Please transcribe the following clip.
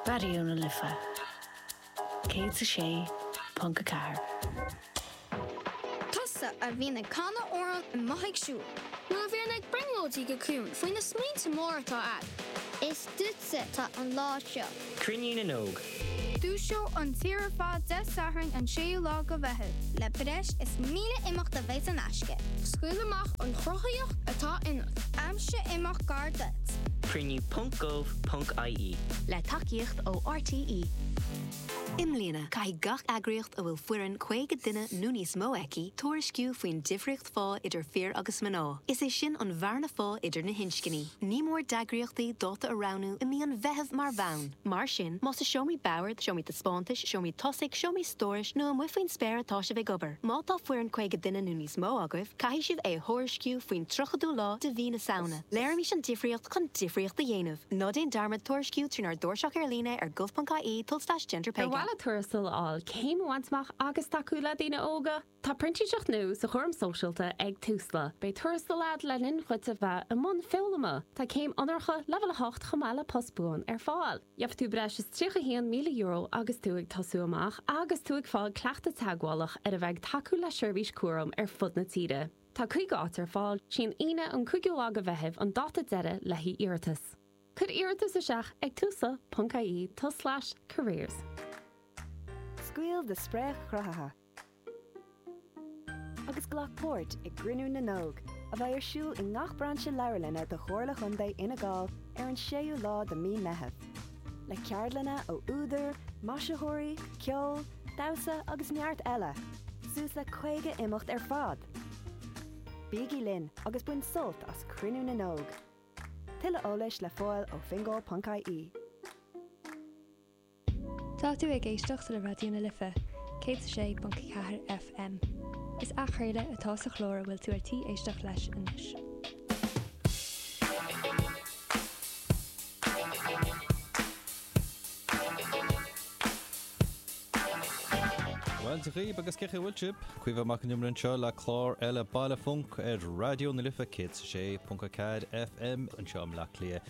Raidió na Life 106.4. Tusa a bhíonn ag canadh amhrán amuigh ag siúl. Nó a bhíonn ag brionglóidí go ciúin faoi na smaointe móra atá a'd. Is duitse atá an lá seo. Cruinniú na nÓg. Dúiseoidh an tír ar fad Dé Sathairn an 6ú lá de Mheitheamh. Le breis is 1,000 imeacht a bheidh saor in aisce. Scaoil amach an chruthaíocht atá ionat. Aimsigh imeacht gar duit. Cruinniú ponc gov ponc ie. Le tacaíocht ó RTÉ. I mbliana, caithfidh gach eagraíocht a bhfuil foireann 50 duine nó níos mó aici tuairisciú faoin difríocht phá idir fir agus mná, is é sin an bhearna phá idir na hinscní. Ní mór d'eagraíochtaí dáta a roghnú i mí an Mheithimh mar bhonn. Mar sin, más i seomraí boird, seomraí taispeántais, seomraí tosaigh, seomraí stórais nó amuigh faoin spéir atá sibh ag obair, má tá foireann 50 duine nó níos mó agaibh, caithfidh sibh é a thuairisciú faoin 30ú lá de mhí na Samhna. Léirímis an difríocht chun difríocht a dhéanamh. Ná déan dearmad tuairisciú trínár dtairseach ar líne ar gov.ie tulslais gender pay gap. Ar mhaith leat tuarastal a fháil, céim a bhaint amach agus tacú le daoine óga? Tá printíseacht nua sa chúram sóisialta ag Tusla. Beidh tuarastal agat le linn dhuit a bheith i mbun foghlama. Tá céim onóracha leibhéal 8 chomh maith le post buan ar fáil. Gheobhaidh tú breis is €31,000 agus tú ag tosú amach agus tú ag fáil cleachtadh teagmhálach ar a bheith ag tacú le seirbhís cúraim ar fud na tíre. Tá 50 áit ar fáil, sí an Aoine an 5ú lá de Mheitheamh an dáta deiridh le haghaidh iarratas. Cuir iarratas isteach ag tusla.ie, tulslais, careers. Scaoil do spréach chruthaitheach! agus glac páirt i gCruinniú na nÓg, a bheidh ar siúl i ngach brainse leabharlainne de Chomhairle Chontae Fhine Gall ar an 6ú lá de mí Meitheamh, le ceardlanna ó údair, maisitheoirí, ceol, damhsa agus neart eile, suas le 50 imeacht ar fad! Bígí linn agus bain sult as Cruinniú na nÓg! Tuilleadh eolais le fáil ó fingal.ie. Tá tú ag éisteacht le Raidió na Life, 106.4 FM. Is athchraoladh atá sa chlár a bhfuil tú ar tí éisteacht leis anois. Bhuel, Dia dhaoibh agus cén chaoi a bhfuil sibh, Caomhán Mac Con Iomaire anseo le clár eile Baile Func ar Raidió na Life 106.4 FM anseo i mBleá Cliath